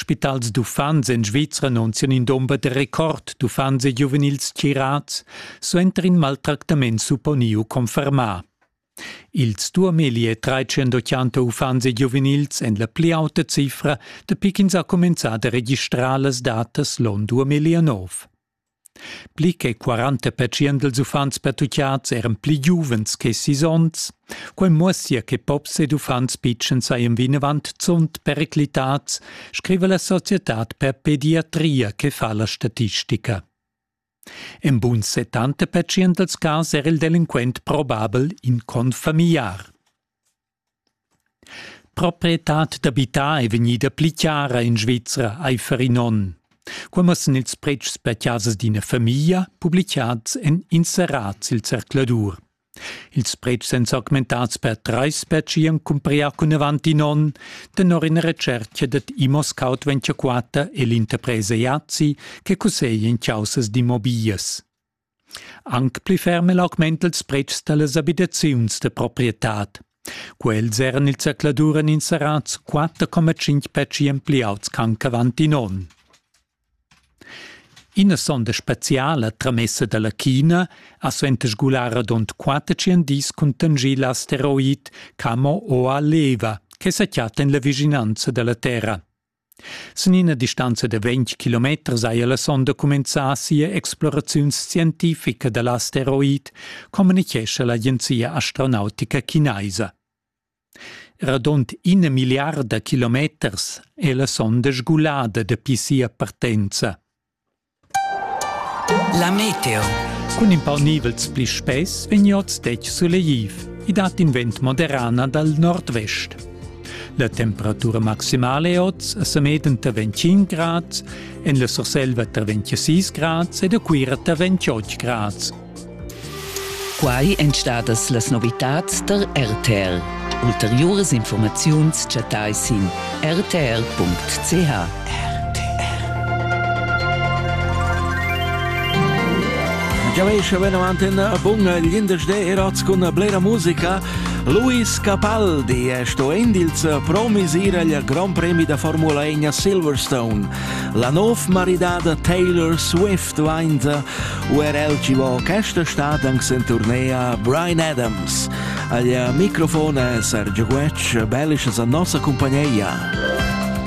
Spitals d'uffants en Svizra non sian in domber de record d'uffants e giuvenils tgirats, suenter in maltractament supponiu confermà. Ils duameli e treicentotschanta uffants e giuvenils en la pli auta cifra dapi ch'ins ha cumenzà da registrar las datas l'on 2009. Pli che quaranta pertschient dals uffants pertucchads eran pli giuvens che sis onns. Quai muossia che pops ed uffants pitschens sajan vinavant zunt periclitads, scriva la societad per pediatria che fa la statistica. En bun settanta pertschient dals cas era il delinquent probabel in confamiliar. Proprietad d'abitar è vegnida pli chara en Svizra aifer in onn. Quai mussan ils pretschs per chasas d'ina famiglia publicads en inserats il zercladur. Ils pretschs èn s'augmentads per trais per chi han cumprià cun avant in onn, tenor ina retschertga dad Imoscout 24 e l'interpresa Iazzi che cusseglia in chaussas d'immobiglias. Anc pli ferm el augment ils pretschs da las abitaziuns da proprietad. Quels eran il zercladur en inserats 4,5 petschi ampliauts ch'ancavan in onn. Ina sonda speciala tramessa dalla China ha suenter sgular radund quater dis cun tangir l'asteroid Camo Oa Leva che sa chatta en la vischinanza dalla Terra. Sin ina distanza da ventg kilometers haja la sonda cumenzà sia exploraziun scientifica da l'asteroid, communitgescha l'agenzia astronautica chinaisa. Radund ina milliarda kilometers è la sonda sgulada dapi sia partenza. La meteo. Cun in pau nivels pli spess vegn oz detg sulegliv. I dat in vent moderana dal nord-vest. La temperatura maximale è oz a Sameden tra 25 grads, en la Surselva tra 26 grads ed a Cuira tra 28 grads. Quai èn stadas las novitads tar RTL. Ulteriuras informaziuns chattai sin rtl.ch. Giaveisch venavant in bun glindesdé erots cun blera musica. Luis Capaldi è sto indils promis ir al Grand Premi da Formula 1 a Silverstone. La nov maridada Taylor Swift stuainza u er el chi vo questa stad anche sen turnea Brian Adams. Agli microfon è Sergio Guecci, bellisches a nossa compagnia.